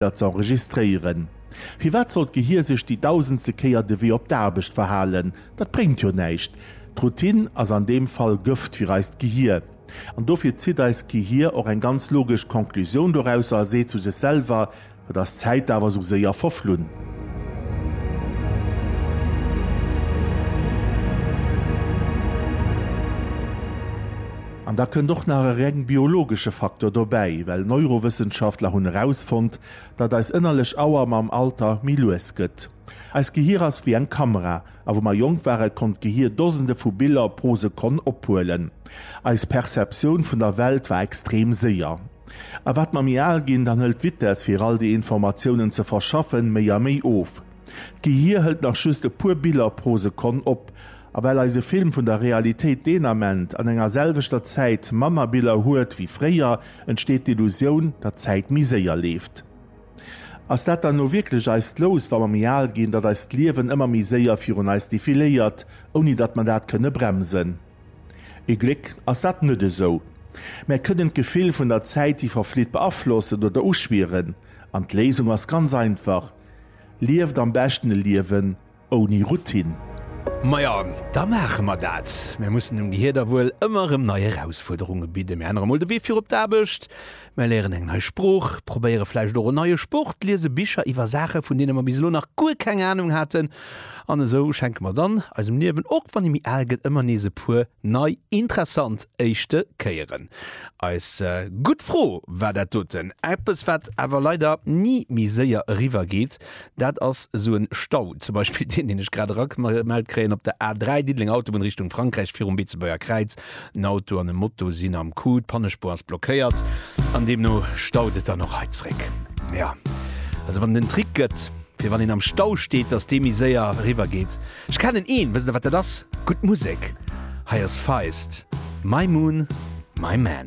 dat ze enregistréieren. Firwat soll d'Gehir sech déi dausendste Kéier de Wee op d'Aarbecht verhalen? Dat bréngt jo näischt. D'Routine ass an deem Fall Gëft fir eist Gehir. An dofir zitt eist Gehir och eng ganz logesch Conclusioun dorausser a seet zu sech selwer, Et ass Zäit awer esou séier verflunn. An da kënnt och nach e reng biologesche Faktor dobäi, well Neurowëssenschaftler hunn erausfonnt, datt eis ënnerlech Auer mam Alter méi lues gëtt. Eist Gehir ass wéi eng Kamera, a wou mer jonk waren, konnt d'Gehir Dosende vu Biller pro Sekonn ophuelen. Eis Perceptioun vun der Welt war extrem séier. A wat mer méi al ginn, dann hëlt d'Vitess, fir all déi Informatiounen ze verschaffen, méi a méi of. D'Gehier hëlt nach just e puer Biller pro Sekonn op. A well eise Film vun der Realitéit deen Ament an enger selwechter Zäit manner Biller huet wéi fréier, entsteet d'Illusioun, datt d'Zäit méi séier leeft. Ass dat dann elo wierklech eist Lous, wa mer méi al ginn, datt eist Liewen ëmmer méi séier virun eis defiléiert, ouni datt mer dat kënne bremsen? Ee Gléck ass dat net esou. Mär kënnen d'Gefill vun der Zäit, déi verflitt, beaflossen oder uschwieren. An d'Léisung ass ganz einfach, Lieft am beschten e Liewen ouni Routine. Majo, da maache mer dat. Mir mussen dem Gehier da wuel ëmmer erëm nei Erausfuerderunge bidden. Mir ännere mol de Wee fir op d'Aarbecht, mir léieren eng nei Sprooch, probéiere vläicht och en neie Sport, liese Bicher iwwer Saache vun deene mer bis elo nach guer keng Anung haten An esou schenke mer dann eisem Liewen, och wann e méi al gëtt, ëmmer nees e puer nei interessant éischte Kéieren. Eis gutt Fro war dat doten. Eppes, wat awer leider ni méi séier eriwwer geet, dat ass esou e Stau, zum Beispill deen, deen ech grad eragemellt kréien op der A3, Diddeleng Autobunn Richtung Frankräich, virum Beetebuerger Kräiz, En Auto an e Moto sinn am Coup, d'Pannespuer ass blockéiert an deemno staut et dann och hei zréck. Jo, also wann et en Trick gëtt, fir wann een am Stau steet, dass dee méi séier eriwwer geet. Ech kennen een, wësst der wat dat ass? Gutt Musek! Hei ass Feist, My Moon, My Man.